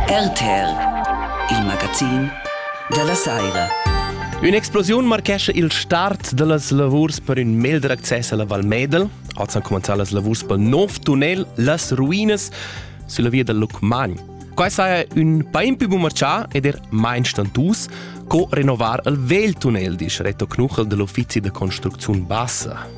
RTL, il magazin della saira. Ün'explosiun marchescha il start dellas lavurs per ün melder access alla Val Medel. Oz han comenzà las lavurs pel nov tunnel Las Ruinas sulla via del Lucmagn. Quai saja ün paim più marcià ed er main stantus co renovar il vegl tunnel, dice Reto Knuchel dell'uffizi de construcziun bassa.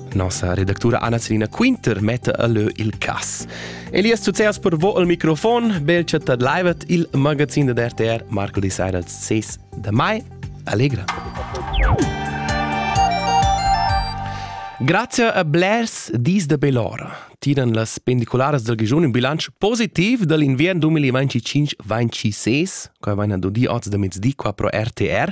Nossa redactura Anna Selina Quinter metta a lö il cass. Elias Tuceas per vo al microfon, bel chat ad Livet, il magazin da RTR, Marco Design al 6 da mai. Allegra! Grazie a blers dis da Belora tiran las pendicularas del Gijon un bilancio positiv dall'invern 2025-26, qua vaina do di oz da mezdi qua pro RTR.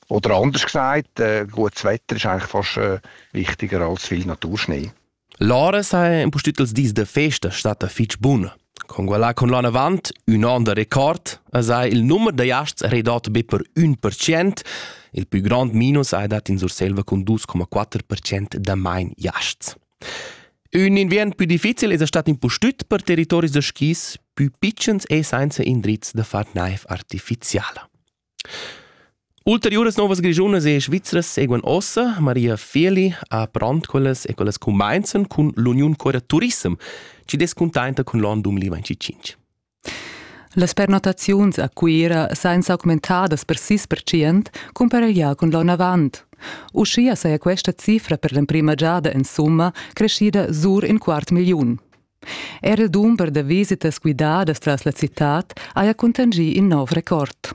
Oder anders gesagt, äh, gutes Wetter ist eigentlich fast äh, wichtiger als viel Naturschnee. Lores ha in pustüt els dis da festa stata fitg bun. Con gualà con l'on avant, ün on da record, sai il nummer da jasts redat be per 1%, il più grand minus ha dat in Surselva con 2,4% da main jasts. Un invient più difficil es stat in pustüt per territoris da skis più pitschens e senza indriz da far naiv artificiala. Ulteriuras novas grischunas e svizras seguan ossa. Maria Fehli ha prant quellas e quellas cumainzan cun l'Uniun Cuora Turissem, chi descuntainta cun l'on 2025. Las pernottaziuns a Cuira sain s'augmentadas per sis percient cumpareglià cun l'on avant. Uschia saja questa cifra per l'emprima giada in summa creschida sur in quart milliun. Er il dumber da visitas guidadas tras la citad haja cuntanschì in nov record.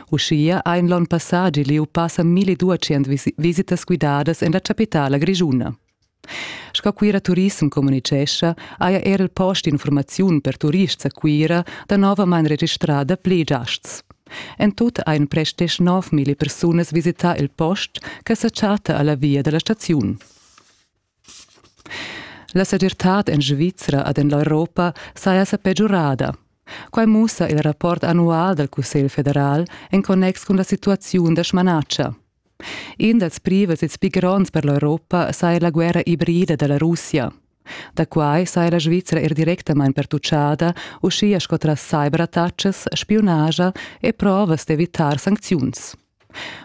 Uschia ha in l'onn passà giu passa 1200 visitas guidadas en la chapitala grischuna. Sco Cuira Turissem communitgescha, haja er il post d'informaziun per turists a Cuira danovamain registrà dapli giasts. En tut ein prestes 9.000 persunas visità il post che sa chatta alla via dalla staziun. La segirtad en Svizra ad en l'Europa saja sa pegiurada. Quai mussa il rapport annual dal Cussegl federal en connex cun la situaziun da smanatscha. In dals privels ils pli gronds per l'Europa saja la guerra ibrida da la Russia. Da quai saja la Svizra er directamain pertuccada, uschia sco tras cyberattacas, spiunaja e provas d'evitar sancziuns.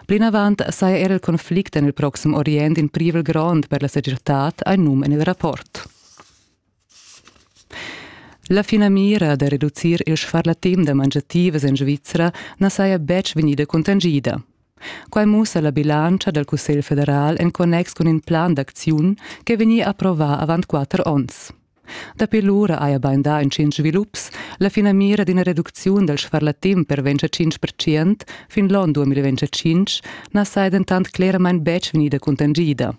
Plinavant saja era il conflict en il proxim Orient in privel grond per la segirtad, ha num en il rapport. La finamira da reducir il sfarlatim da mangiativas en Svizra na saja betg vegnida contangida. Quai mussa la bilantscha dal Cussegl federal en connex cun in plan d'acziun che vegni approvà avant quatter onns. Dapi lura haja bandà intgins svilups la finamira d'ina reducziun dal sfarlatim per ventscha 5% fin l'onn 2025 na saja dentant cleramain betg vegnida cuntangida.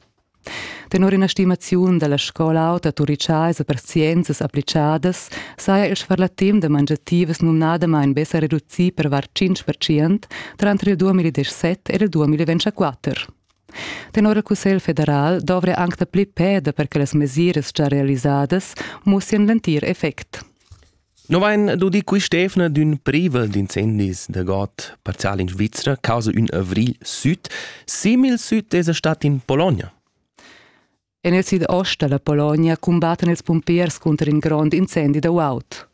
Tenor ina stimaziun da la scola auta turichasa per scienzas applicadas saja il sfarlatim da mangiativas numnadamain be sa reducì per var 5% tranter il 2017 e il 2024. Tenor il Cussegl federal dovria anc dapli peda per che las mesiras già realisadas mussien l'entir effect. No vain dudi quist'evna d'ün privel d'incendis da god parzial in Svizzera causa ün avril süd. Simil süd es stat in Polonia. En il sidost da la Pologna cumbattan ils pumpiers cunter in grond incendi da guaud.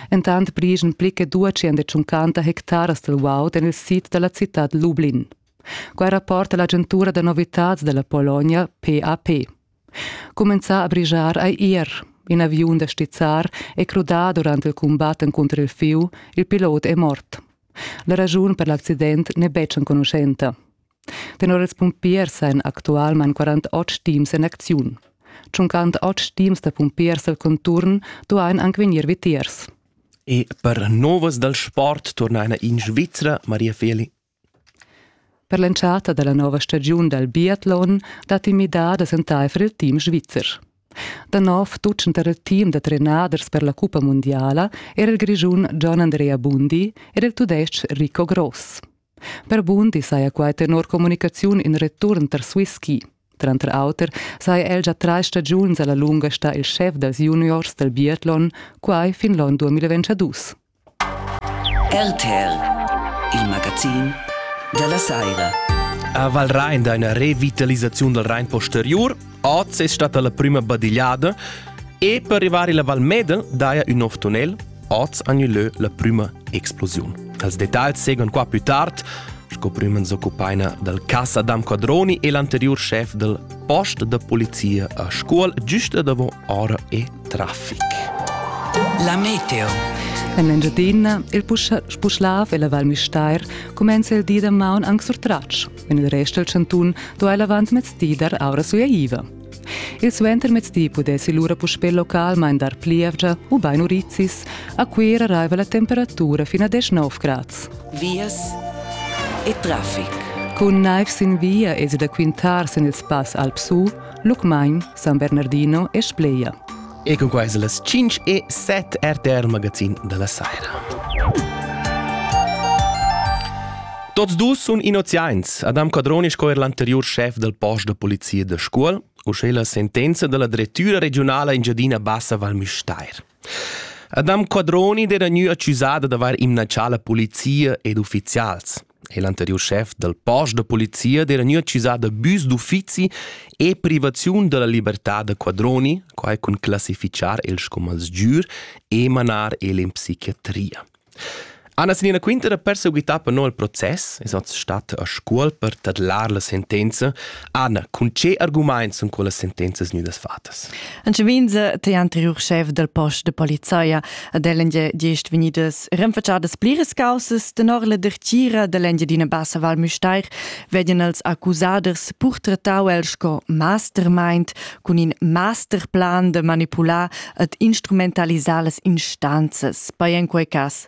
Entant brigen pli che 250 hectaras dal guaud en il sid da la citad Lublin. Quai rapporta l'agentura da novitads da la Pologna PAP. Cumenzà a brigiar ai ir. In aviun da stizzar è crudà durant il cumbat encunter il fieu, il pilot è mort. La ragiun per l'accident n'è betg enconuschenta. Tenor ils pumpiers èn actualmain 48 teams en acziun. Tschuncant otg teams da pumpiers al conturn duain anc vegnir vitiers. E per novas dal sport turnaina in Svizra, Maria Feli. Per l'entschatta da la nova stagiun dal biatlon datti midadas entaifer il team svizzer. Da nov tutschentar il team da trenaders per la cuppa mundiala era il Grischun Gian Andrea Bundi ed il Tudestg Rico Gross. Per bun di saja quai tenor communicaziun in return tar Swisski. Tranter auter saja el già trais stagiuns a la lunga stà il schef dals juniors dal biatlon, quai fin l'onn 2022. RTL, il magazin da la saira. A Valrain d'ina revitalisaziun dal Rain posterior. Oz è stata la prima badigliada e per arrivare alla Val Meda daja un nov tunnel Oz han lieu la prüma explosiun. Els detagls segan qua plü tard, sco prüm ens occupaina dal cass Adam Quadroni e l'anteriur schef del post da polizia a scuol giusta davant ora e traffic. La meteo. En l'Engiadina, il Spuslav e la Val Mistair comenza il di da maun anc sur Tratsch. En il resto del cantun do el avant mez di dar aura suia iva. Il suentermezdi pudessi lura puspè localmain dar plievgia ubain urizis. A Cuira raiva la temperatura fin a 19 grads. Vias e traffic. Cun naivs sin via esi da quintar sin il spass Alp Su, Lucmagn, San Bernardino e Spleia. E con quai las 5 e 7 RTR magazin della sera. Tots dus sun innoziaints. Adam Quadroni sco er l'anteriur chef del post da polizia da scuol, uschè la sentenza della drettura regionala Engiadina Bassa Val Müstair. Adam Quadroni d'era gnü accusada d'avair imnaccià la polizia ed ufficials. e l'anteriur schef dal post da polizia era gnü accusà d'abüs d'uffizi e privaziun da la libertà da quadroni, quai cun classifichar el sco masgiür e manar el in psichiatria. Anna Senina Quinter ha perseguità però il process e s'ha stat a Scuol per tadlar la sentenza, Anna, cun che argumaint sun quellas sentenzas gnüdas fattas? Anche Vinze, te anteriur chef del post de polizia, ad ellen je gest vegnidas renfatschadas pliras causas tenor la dertgira dell'Engiadina Bassa Val Müstair vegien els accusaders purtretau el sco mastermind cun in masterplan de manipular et instrumentalisar las instanzas, poi en quei cas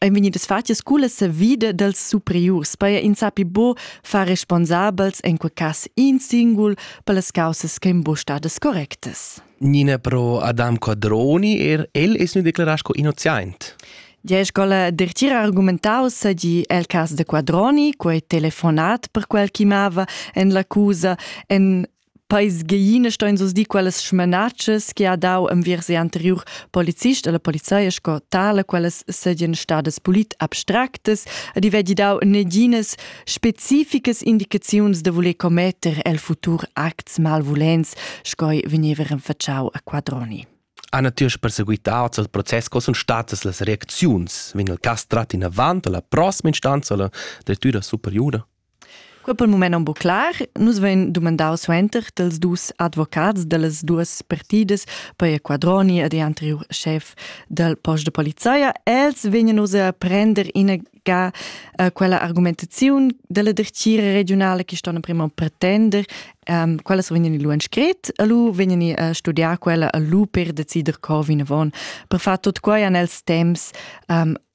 ein vegnidas fatgas culla savida dals superiurs per insapi bo far responsabels en quei cass in singul per las causas che ein bo stadas correctas. Nina pro Adam Quadroni er el es nu declarar sco innocent. Dia scola dertira argumentaus di el cas de Quadroni, quei telefonat per quel chi mava en l'accusa en Pais geiine stein sus di quellas schmenatschas che ha dau enviers ei anteriur polizist alla polizei sco tale quellas sedien stadas pulit abstractas ed i vedi dau neginas specificas indicaziuns de voler commetter el futur acts malvulents sco ei vegneva renfatschau a Quadroni. Ha natürlich perseguitau il proces co sun statas las reacziuns, vegn il cass trat in avant alla prossima instanza alla drettura superiura? Quei per il mument non buc clar. Nus vein dumandau suenter dels dus advocats dallas duas partidas per il Quadroni e igl anteriur schef dal post de polizia. Els vegnan oz a prender ina ga uh, quella argumentaziun della dretgira regionala che ston prima pretender. Um, quella so vegnan lu en scret e lu vegnan a studiar quella e lu per decider co vinavon. Per far tot quei han els temps um,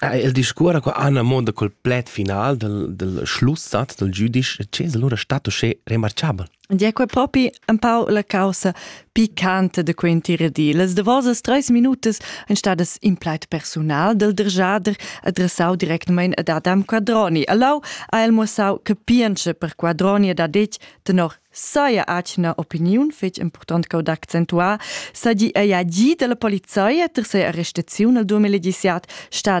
El discuora qua an moda col pled final del, del schlussat del giudice, che es allura stato sche remarchabel. Ja, quai propi un pau la causa picante de quei intira di. Les davosas treis minutas ein stadas in plaid personal del derjader adressau directament ad Adam Quadroni. Allau ha el muossau che piense per Quadroni ed ha detg tenor saja atgna opiniun fetg impurtont ch'eu d'accentuar, seigi ei agid dalla polizia, ter sei arrestaziun el 2017 stada